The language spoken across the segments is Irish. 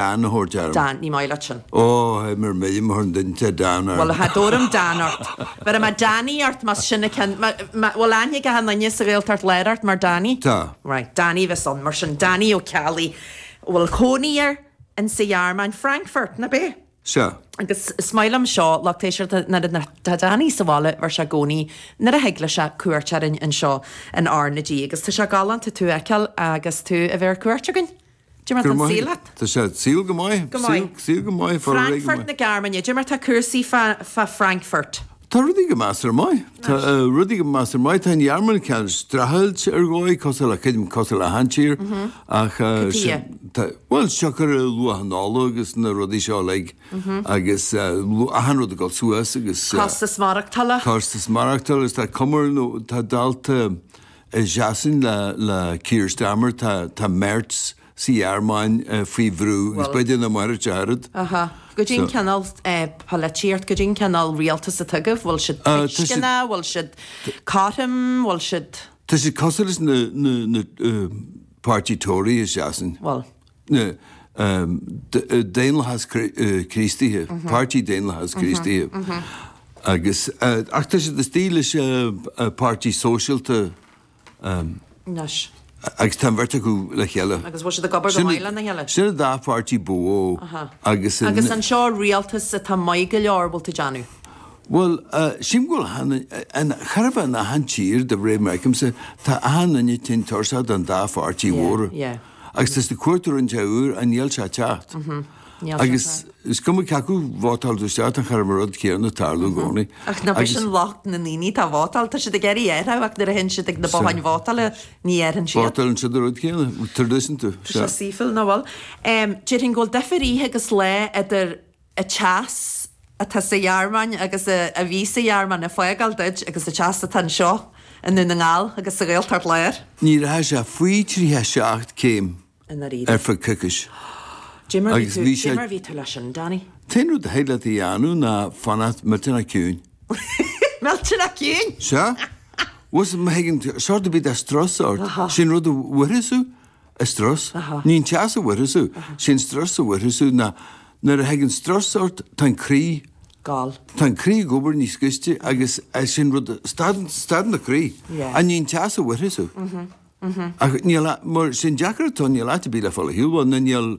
Dan, a thabhairt orm. Dan, Ní maith leat sin. Ó, hé, mura mbeidh imtheoir an duinte a Dan Bhuel, orm. ha, dtabharfam Dan ort. Bheirim a Danny ort más sin an ceann, má, má, bhuel, aithne ag achan nduine sa Ghaeltacht Láir ort mar Danny. Tá. Right, Danny a bheas ann mar sin, Danny Ó Ceallaigh a bhfuil cónaí air in sa Ghearmáin, Frankfurt, nab é? Sea. Agus is maith liom seo, lucht éisteachta, nuair a, nuair, tá Danny sa bhaile, bheir sé i gcónaí nuair a thig leis é, cuairt orainn anseo in R na G. Agus tá sé galánta tú a fheiceáil agus tú a bheith ar cuairt againn. Cad é mar tá an saol leat. Tá sé, saol go maith. Go maith. Saol go maith. Frankfurt na Gearmáine. Cad é mar tá cúrsaí i Frankfurt. Tá rudaí go maith ar maith. Tá rudaí go measartha maith. Tá an Ghearmáin cineál streachailt ar dhóigh, cosúil le cuid, cosúil le achan tír. Ach, bhuel, siocair luach an ola agus na rudaí seo uilig agus achan rud ag dul suas agus. Costas maireachtála. Costas maireachtála agus tá cuma ar nó tá dalta, A dhéanadh sin le Keir Starmer, tá Merz sa Ghearmáin faoi bhrú, agus beidh ina Mheitheamh Dearg. Cad é an cineál polaitíocht, cad é an cineál rialtas atá acu, bhfuil siad tuisceanach, bhfuil siad cothrom, bhfuil siad. Tá siad cosúil leis na páirtí Tory, is é sin. Bhuel, daonlathas Críostaíthe, Páirtí Daonlathas Críostaíthe agus, ach tá siad istigh leis an Páirtí Sóisialta anois agus tá an bheirt acu le chéile. Agus bhfuil siad ag obair go maith lena chéile? Sin an dá pháirtí ba mhó agus. Agus an seo rialtas atá maith go leor, bhfuil tú déanamh? Bhuel, sílim go bhfuil achan, an, chóir a bheith in achan tír de réir mar a tchímse, tá achan duine tinn tuirseach den dá pháirtí mhóra. Yeah, yeah. Agus tá siad ag cuartú rud inteacht úr i ndáil le teacht. Agus is cuma cé acu vótáil tú isteach tá chóir a bheith an rud céanna ag tarlú i gcónaí. Ach nab shin locht na ndaoine atá ag vótáil, tá siad ag éirí ar a ach nuair a théann siad chuig na botháin vótála ní dhéarfainn siad. Vótáileann siad an rud céanna, tradition tú. Tá sé saoithiúil, ná bhfuil. Déarfainn go bhfuil difear oíche agus lae idir. an teas atá sa Ghearmáin agus a bhí sa Ghearmáin ag fágáil duit agus an teas atá anseo i nDún na nGall agus sa Ghaeltacht Láir. Ní raibh sé faoi 37 céim i ndáiríre. ar feadh coicíse Cé mar a bhí agus tú, bhí cé sé. mar a bhí tú leis sin, Danny? An t-aon rud a thig leat a dhéanamh ná fanacht millteanach ciúin. Millteanach ciúin! Sea. Bhuel, má thigeann sórt ar bith de strus ort, sin an rud a mhuirfeas thú. an strus. Ní an teas a mhuirfeas thú, sé an strus a mhuirfeas thú ná nuair a thigeann strus ort tá an croí, tá an croí ag obair níos gaiste agus sin rud, stadann do croí ach ní an teas a mhuirfeas thú. Ach níl, mar, sé an deacair atá, níl áit ar bith le fáil a shílfeá, ná níl,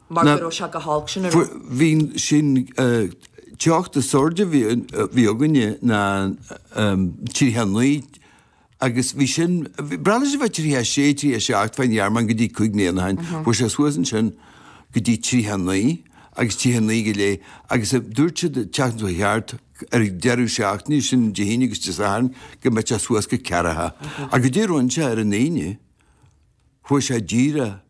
mar go raibh sé go holc sin, a raibh. bhí an teocht is airde a bhí againne ná 39 agus bhí sin breá leis a fháil 36 37 fán Ghearmáin go dtí cúig bliana ó shin fuair sé suas ansin go dtí 39 agus 39 go léith agus dúirt siad ag teacht go ceart ar an deireadh seachtaine sin Dé hAoine agus Dé Sathairn go mbeadh sé suas go ceathracha a go dtí go raibh sé ar an Aoine fuair sé díreach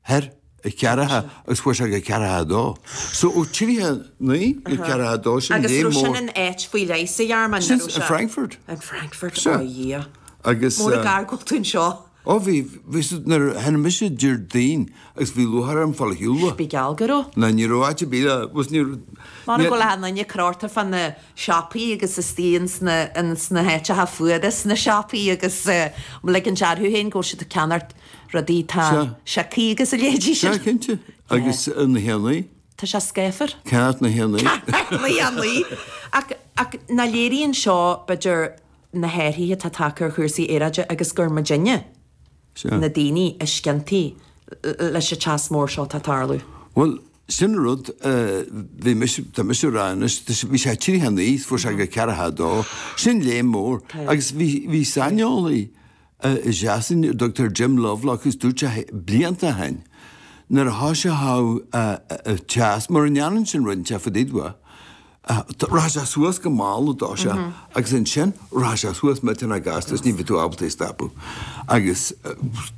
thar a ceathracha agus fuair sé go ceathracha a dó. So ó tríocha a naoi go ceathracha a dó, sin léim mór. Agus an raibh sin in áit faoi leith sa Ghearmáin, ní raibh sé? Sin, in Frankfurt. In Frankfurt, ó Dhia. Agus. Mór ag argóint faoin seo. Ó bhí, bhí siad nuair a tháinig mise Déardaoin agus bhí lúcháir orm fáil ar shiúl. Bíodh geall go raibh. Ná ní raibh áit ar bith le, bhuel ní raibh. Mara bhfuil an duine ag dul thart fá na siopaí agus istigh ins na, ins na háiteacha fuara sna siopaí agus ligint orthu féin go bhfuil siad ag ceannacht. rudaí. Tá Sea. sé cuí agus a léidís Sea, ar. cinnte. Agus na héanacha? Tá sé scáfar. Céard na héanacha? na héanacha. Ach ach nach léiríonn seo, b'fhéidir, na hathruithe atá tagtha ar chúrsaí aeráide agus gur muidinne, Sea. na daoine, is ciontaí leis an teas mór seo atá ag tarlú? Bhuel, sin an rud. Bhí mise, tá mise ag rá anois, bhí sé tríocha a naoi, fuair sé go ceathracha a dó. Sin léim mór. Agus bhí saineolaí, i Sasain, a dtugtar Jim Lovelock, is dúirt sé blianta ó shin nuair a thoisigh an teas, mura ndéanann sin rud inteacht fá dtaobh de, rachadh sé suas go mall, a dúirt sé, agus ansin rachadh sé suas millteanach gasta is ní bheadh tú ábalta é a stopadh. Agus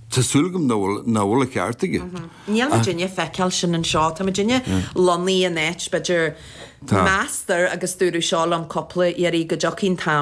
tá súil agam nach bhfuil, nach bhfuil an ceart aige. Níl muidinne ag feiceáil sin anseo. Tá muidinne lonnaithe in áit, b'fhéidir, meastar, agus dúradh seo liom cúpla iarraidh, go dtiocfaidh an t-am,